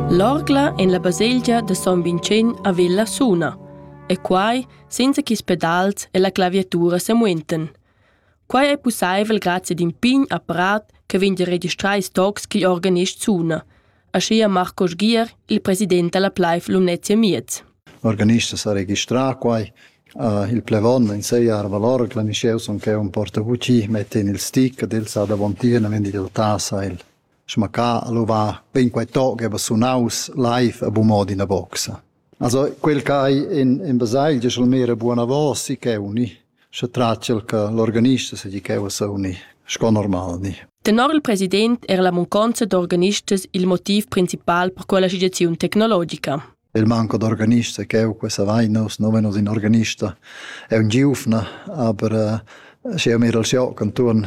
L'orgla en la baselgia da Son Vincent a Villa suna, e quai senza ch'is pedals e la claviatura semuentan. Quai è pussaivel grazie ad in pign apparat che vegn da registrar ils tocs ch'igl organist suna, aschia Marco Sgier, il president dalla Pleif Lumnezia Miez. L'organista sa registrà quai Uh, il plevon in sei arvalor clamischeu son che un porta vuci mette in il stick del sa da vontia na vendi da tasa il schmaccà al ova bein quei toc che va sunaus live a bu mod in a boxa. Also quel che in in basagl giu mera buona voce che uni sche tracel che l'organista se di che sa uni sco normal ni. Tenor il president era la munconza d'organistas il motiv principal per quella associazione tecnologica. Il manco d'organista ch'eu questa vaina, uss nu vegnu ün organista, è ün giuvna, aber schi eu miro il joc intuorn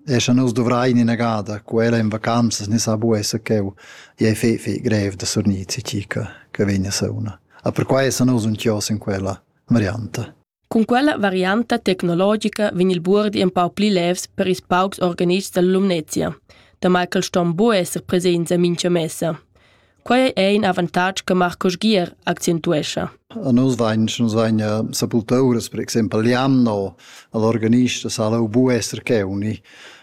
e scha nus duvrain inagada quella in vacanzas ni sa bu esser ch'eu i ei fei fei grev da surgnir tgi che vegna sauna. A perquai essan nus ün chios in quella varianta. Cun quella varianta tecnologica vegn il buordi empau pli levs per ils paucs organists dalla Lumnezia, damai ch'els ston buc esser presents en mintga messa. Quei è in avantatg che Marco Sgier accentuescha. A nus vegn, nus vegn sepultau uras, per exempel l'anno, all'organista sa lau bu esser cheuni.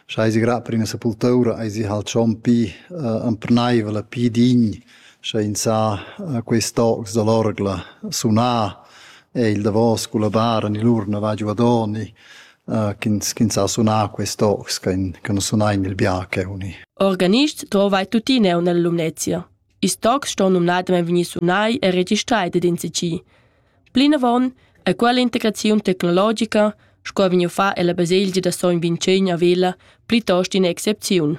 Schei si grad per ina sepultura, ei si halt schon pi uh, emperneivel, pi dign Scha ins ha quist tocs da l'orgla sunà, è il davos culla bara ni l'urna va giuadoni, ch'ins ch'ins ha sunà quist tocs ch'han ch'han sunà in il biache uni. Organist dovai tuttina eir nella Lumnezia. Ils tocs ston numnadamain vegnir sunai e registrai dad in CC. Plinavon è quella integraziun tecnologica, sco vegniu fa ella baselgia da Sogn Vincent a Vella, plitost ina excepziun.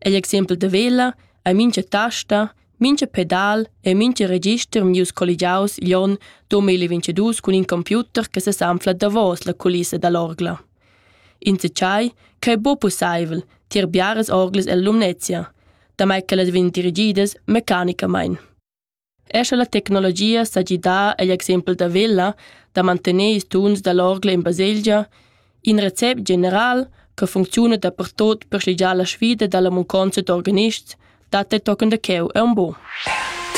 Egl exempel da vela ei mintga tasta, mintga pedal e mintga register vegnius colligiaus igl onn duemila-ventadus cun in computer che sesanfla davos la culissa dall'orgla. Enzatgei che ei buca pusseivel tier biaras orglas ella Lumnezia, damai che las vegn dirigidas mecanicamein. Er sche la tecnologia sa gidà egl exempel da Vella da mantener ils tuns da l'orgla en baselgia, in recept general che funcziuna dapertut per sligiar la sfida dalla munconza d'organists dat ei tochen da cheu aunc buc.